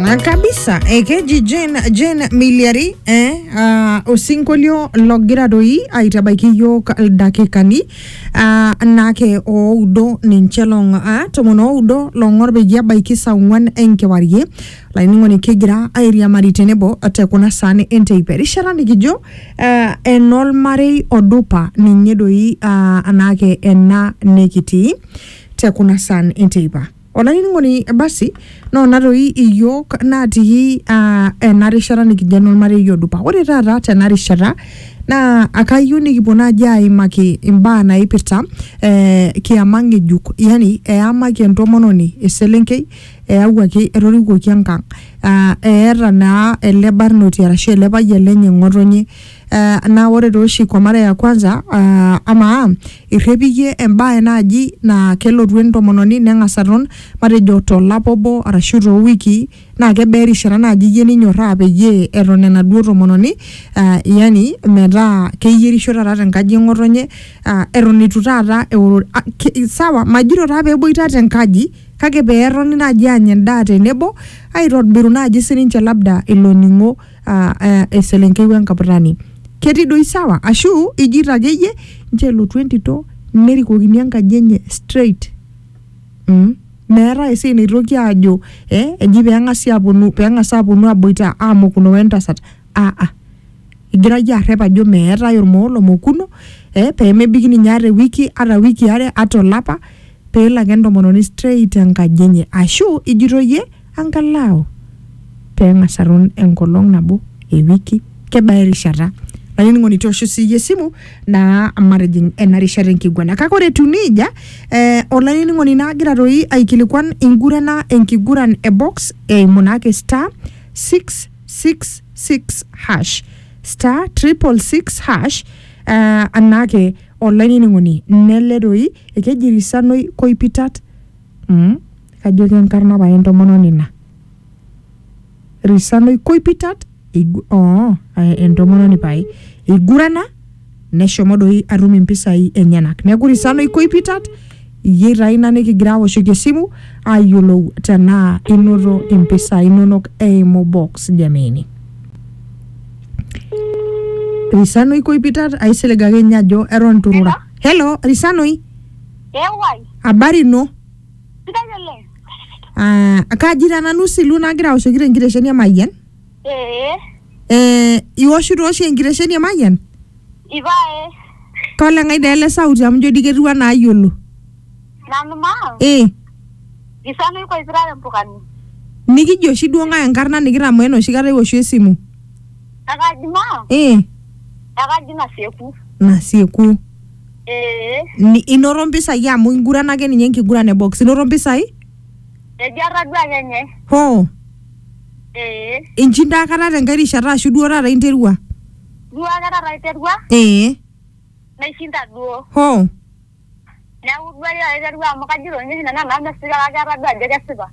Na kabisa ekeji Jane, Jane Miliari eh, uh, osinkolio logira doi aitabaiki yiok ildakikani uh, nake oudo ninche long uh, tomon oudo long'or peyie ebaiki saa ong'uan enkewarie laining'oni kigira airiamari tenebo te kuna saani enteipa erishata nikijo uh, enolmarei odupa ninye doi uh, anake ena nikitii te kuna saan enteipa Olainining'oni basi noona toi iyiook natii uh, ena rishata nikijo enormarei odupa. Ore taata tena rishata naa akayieu nikipuo naaji aimaki imbaa naipirta eh, kiama ng'ejuk, yani eyamaki entomononi eselenkei eyawuaki etorikuoki enkang' uh, eeta naa ele barnoti arashu ele payian lenye ng'otonye Eh, naa ore tooshi kwa mara ya kwanza ah, amaa irrepiyie embae naaji naa kelotu entomononi neng'as aton matejo tolapa obo arashu toowikii naa kebaa erishata naaji iyie ninyorraa peyie eton enaduo tomononi ah, yani metaa keyierisho taata tenkaji e ng'otonye ah, eton eitu taata eoro ah, ke- sawa majito taa peeboitata enkaji kake peetoni naaji aanya endaa tenebo aitobiru naaji sininche labda ilo ning'o. ah, eh, eselenkei wenkaputani ketii doi sawa ashu ijito akeyie nche elotu entito nerikokini enkaji enye straight mm. meetae esiai naitoki aajo eh, eji peng'asi aponu peng'as aponu aboita amokuno wentasat aa ah, egira yie arrep ajo meetae ormoo lomokuno eh, pemebiki ninye ata ewiki ata wiki are ata olapa peelo ake entomononi straight enkaji enye ashu ijito yie angalau pee eng'as aton enkolong nabo ewiki kebaa erishata olainining'oni toosho siiyie esimu naa matijing ena rishata enkiguana kake ore etiu niija eh, olainining'oni naagira toi aikilikuan ingurana enkiguran e box eimu naake star 666 hash star 666 hash eh, anaake olainining'oni nele toi ekeji risanoi koipitat Mm, kajo kenkarna pae entomononi ina risanoi koipitat eigu- oo, eh, entomononi pae eigurana neshomo doi atum impisai enyenak neeku risanoi koipitat iyie taa ina nikigira awoshoki esimu ayiolou tenaa inoto impisai inonok eimu box jameni risanoi koipitat aisilig ake ninye ajo eton turura helo risanoi Ewai, habari ino sidai oleng. Ah, kaji taa nanu silu nagira aoshoki tenkitesheni emayian Ee, eh, iwoshito oshi enkitesheni emayian ipae, koleng'ai dee ele sauti amu ijo dii ketiu anaa ayiolo nanu maa, eh, isana ikoipira tempukani. nikijo oshi duo ng'ae enkarna nikitamoo enoshi kata iwoshu esimu Ekaji maa, eh, ekaji nasieku. nasieku Ee, Ni- inoto mpisai amu inguran ake ninye enkiguran e box inoto mpisai ejo atadua ake nye. hoo Ee, inchinda aikata tenkae rishata ashu duo taata interua duo ake taata aiterua, ee naishinda duo. hoo Neeku duo ake taata aiterua amu kajito ninye oshi nanu enaa mesipika kake atadua ajo kesipa.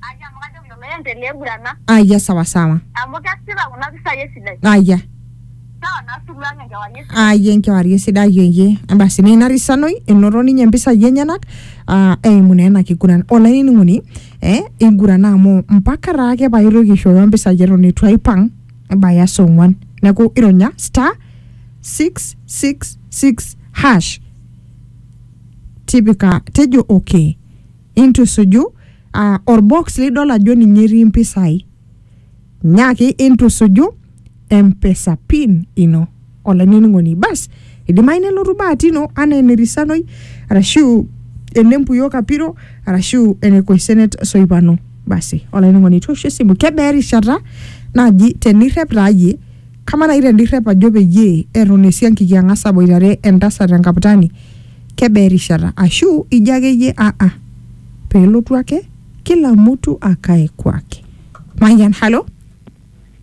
Aya amu kajoki lolo oiendelea aigurana. Aya sawa sawa. Amu kesipa kuna pisai esidai. Aya. Sawa naa suluw ang enkewarie esidai. Aya enkewarie esidai eyie. Basi naa ina risanoi enoto ninye mpisai enyenak aa eimu naa ena kiguran. Olainining'oni eh igurana amu mpaka taake paitoki aishoyo mpisai eton eitu aipang ebaya saa ong'uan. Neeku ironya star, six, six, six, hash tipika tejo okay. intusuju uh, orbox lidol ajo ninye etii impisai nyaaki intusuju empesa pin ino olainining'oni bas idimayu nelotu bahati ino anaa enerisanoi arashu enempuyo kapiro arashu ene koisenet soipano basi olainining'oni toosho esimu kebaa erishata naaji tenirrep taa yie Kamaa naaji tenirrep ajo peyie eton esiankiki ang'as aboitare entasat enkaptani kebaa erishata? Ashu ijo ake iyie aa pelotu ake kila mtu akae kwake. Mayian, halo?